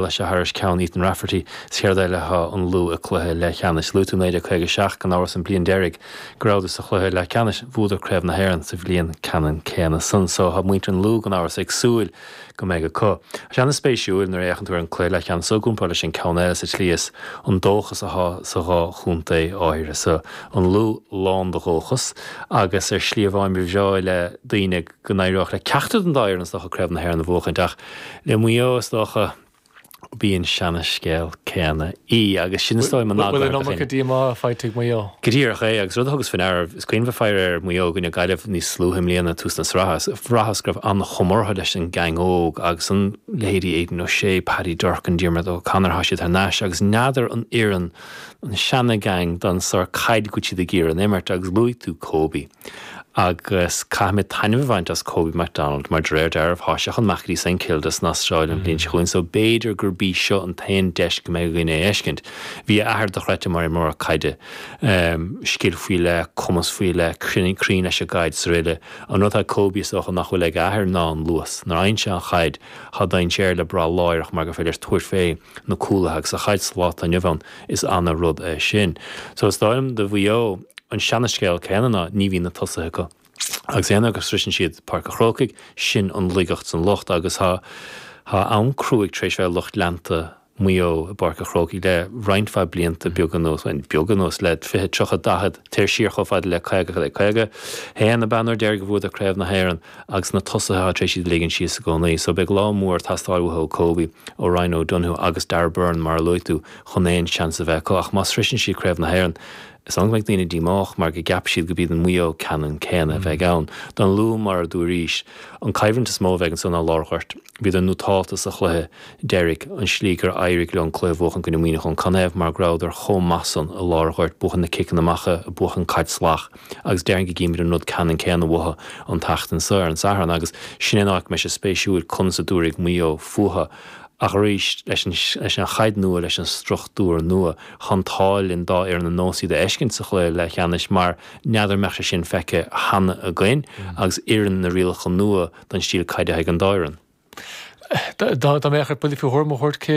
leis a thairis ceann Ethan Rafferty is céard eile atá an Lú i gcluiche leathcheannais luaigh tú 1957 gan amhras an bliain deiridh go rabhadar sa chluiche leathceannais bhuadar craobh na hÉireann sa bhliain ceannann céanna san so tá muintir an Lú gan amhras ag súil go mbeidh ach tá sé an-spéisiúil nuair a fhéachann tú ar an cluiche leathcheannais so i gcomparáid leis an ceann eile sa tslí is an dóchas atá sa dhá chontae áirithe so an Lú lán de dhóchas agus ar shlí amháin ba bhreá le daoine go n-éireodh le ceachtar den dá fhoireann, is dócha, Craobh na hÉireann a bhuachaint ach le Maigh Eo, is dócha. b'í an seanascéal céanna í agus sin is dóigh mo nath gairid a chinn. Bhuel an iomarca díomá faighte ag Maigh Eo. Go díreach é agus rud a thugas faoi ndeara, is cuimhin bheith ag faire ar Mhaigh Eo i gcoinne Gaillimh níos luaithe i mbliana ag tús na sraithe, bhraitheas go raibh an-chuma orthu leis an ngeaing óg agus an leithéidí Aidan O'Shea, Paddy Durcan, Diarmuid O'Connor, tá siad thar n-ais agus n'fheadar an oireann an seanagheaing don sórt caide go bhfuil siad ag iarraidh a imirt agus luaigh tú Kobe. agus caithfimid taitneamh a bhaint as Kobe McDonald, mar de réir dealraimh tá sé chun imeacht go dtí Saint Kilda san Astráil an bhliain seo chugainn so b'fhéidir gurb í seo an t-aon deis go mbeidh againn é a fheiscint. Bhí a athair dochreidte mar imreoir caide, scil faoi leith, cumas faoi leith, cruinn leis an gcaid 's araile. An rud atá ag Kobe is dócha nach bhfuil ag a athair ná an luas. Nuair a fhaigheann sé an chaid, tá dainséar le brath láithreach mar gur féidir leis tabhairt fé na cúlaithe agus sa chaid sa lá atá inniu ann, Is ana rud é sin. So is dóigh liom do Mhaigh Eo an seana scéal céanna ná ní bhíonn na tosaithe acu agus aon uair go sroiseann siad Páirc a Chrócaigh sin an laigeacht 's an locht agus tá tá am cruaidh tar éis bheith ag lucht leanta Maigh Eo i bPáirc a Chrócaigh le roinnt mhaith blianta beag anuas bhuel beag anuas le fiche tríocha daichead téir siar chomh fada le caoga caoga haon ab ea an uair deiridh a bhuadar Craobh na hÉireann agus na tosaithe atá tar éis iad a ligint síos i gcónaí. So beidh lá mór ag teastáil uathu, ó Kobe, ó Ryan O'Donoghue agus Darragh Beirne mar a luaigh tú, chun aon seans a bheith acu. Ach má shroiseann siad Craobh na hÉireann, is annamh go mbeidh daoine díomách mar go gceapfaidh siad gurb iad an Maigh Eo ceannann céanna a bheidh ann. Don Lú, mar a dúraís, an coimhlint is mó a bheidh anseo ná lár an ghoirt. Bhíodar nótálta sa chluiche deiridh, an slí gur éirigh leo an cluiche a bhuachan i gcoinne Muineachán, canathaobh, mar go rabhadar chomh maith san i lár an ghoirt, ag buachan na ciceanna amach, ag buachan caid salach. agus déarfainn go gcífimid an rud ceannann céanna uathu an tseachtain seo ar an Satharn agus sin é an áit go mbeidh sé spéisiúil conas a dtabharfaidh Maigh Eo fúthu ach arís leis an chaid nua, leis an struchtúr nua, tá an t-ádh linn dhá fhoireann ar nós iad a fheiscint sa chluiche leathcheannais mar n'fheadar an mbeadh sé sin feicthe cheana againn agus oireann na rialacha nua don stíl caide atá ag an dá fhoireann. Dá mbeadh ort buille faoi thuairim a thabhairt cé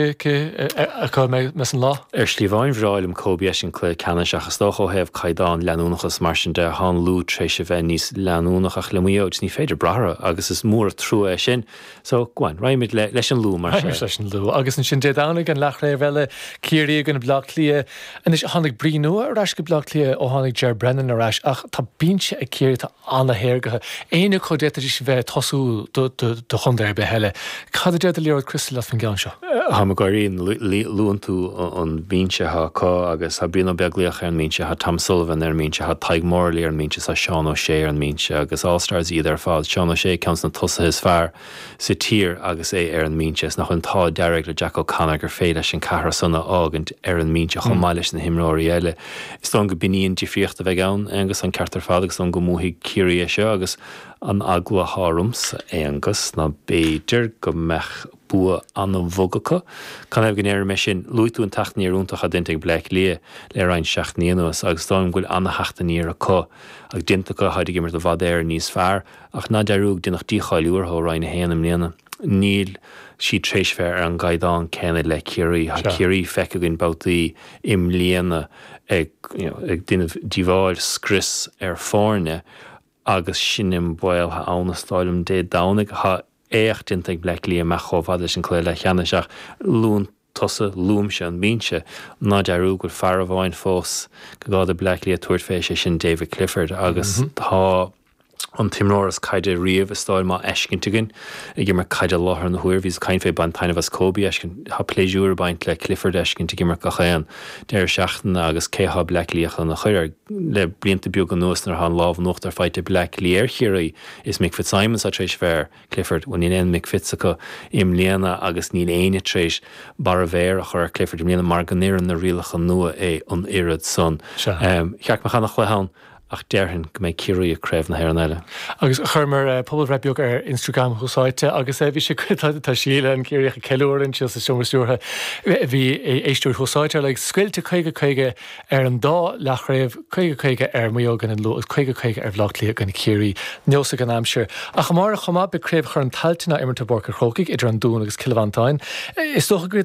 acu a bheidh mé san lá. Ar shlí amháin ba bhreá liom Kobe a fheiscint sa chluiche ceannais ach is dócha ó thaobh caighdeán, leanúnachas, mar sin de, tá an Lú tréis a bheith níos leanúnach ach le Maigh Eo ní féidir brath orthu agus is mór an trua é sin. So, go on, raghaimid leis an Lú mar. Raghaimid leis an Lú. Agus ansin Dé Domhnaigh an leathchraobh eile, Ciarraí i gcoinne Bleá Cliath. Anois tháinig brí nua ar ais go Bleá Cliath ó tháinig Ger Brennan ar ais ach tá binse ag Ciarraí, tá an-téagartha. Éinne acu d'fhéadfaidís a bheith ag tosú do chontae ar bith eile? Cad a deir do liathróid chriostail leis an gceann seo? Tá mé ag gáirí nuair a luann tú an binse seo acu agus tá Brian Ó Beaglaoich ar an mbinse, tá Tom Sullivan ar an mbinse, tá Tadhg Morley ar an mbinse, tá Seán O'Shea ar an mbinse agus All Stars iad ar fad. Seán O'Shea ceann de na tosaithe is fearr. sa tír agus é ar an mbinse, is nach bhfuil an t-ádh dearg le Jack O'Connor gur féidir leis an ceathrar san a fhágaint ar an mbinse chomh maith leis na himreoirí eile. Is dóigh liom go b'in í an difríocht a bheidh ann, Aonghus, an ceart ar fad agus is dóigh liom go mbuafaidh Ciarraí é seo agus an eagla thá ormsa, Aonghus, ná b'fhéidir go mbeadh bua an-bhog acu. Canathaobh go ndeirim é sin? Luaigh tú an teacht aniar iontach atá déanta ag Baile Átha Cliath le roinnt seachtainí anuas agus is dóigh liom go bhfuil an-theacht aniar acu agus déanta acu, táid ag imirt i bhfad Éireann níos fearr. ach ná dearúd gur deineadh dícháiliú orthu ó Roinn 1 i mbliana. Níl siad tar éis bheith ar an gcaighdeán céanna le Ciarraí. Tá Ciarraí feicthe againn babhtaí i mbliana ag déanamh díobháil, scrios ar foirne agus sin é an baol thá ann, is dóigh liom, Dé Domhnaigh. Tá éacht déanta ag Baile Átha Cliath imeacht chomh fada leis an cluiche leathcheannais ach luann. tusa, luaimse an binse, ná dearúd go bhfuil fear amháin fós go gá do Bhaile Átha Cliath tabhairt fé, sé sin David Clifford agus tá an t-imreoir is caide riamh is dóigh liom á fheiscint againn ag imirt caide i láthair na huaire. Bhíos ag caint fé baint taitneamh as Kobe a fheiscint, tá pléisiúr ag baint le Clifford a fheiscint ag imirt gach aon deireadh seachtaine agus cé thá Baile Átha Cliath chun a chur air? Le blianta beaga anuas nuair thá an lámh in uachtar faighte ag Baile Átha Cliath ar Chiarraí is Mick Fitzsimons thá tar éis bheith ar Clifford, Bhuel níl aon Mick Fitz acu i mbliana agus níl éinne tar éis barr a mhéire a chur ar Clifford i mbliana mar go n-oireann na rialacha nua é an oiread san. Ba cheart go mbeadh an-chluiche ann ach déarfainn go mbeidh Ciarraí i gCraobh na hÉireann eile. Agus chuireamar pobalbhreith beag ar Instagram Thús Áite agus bhí sé go, tá Síle, an Ciarraíoch ag ceiliúradh ansin sa seomra stiúrtha, bhí éisteoirí Thús Áite ar like scoilte caoga, caoga, ar an dá leathchraobh, 50 50 ar Mhaigh Eo i gcoinne an Lú agus 50 50 ar Bhaile Átha Cliath i gcoinne Chiarraí. Neosfaidh an aimsir. Ach amárach chomh maith beidh Craobh Chorn Tailteann á imirt i bPáirc an Chrócaigh idir an Dún agus Cill Mhantáin. Is dócha go.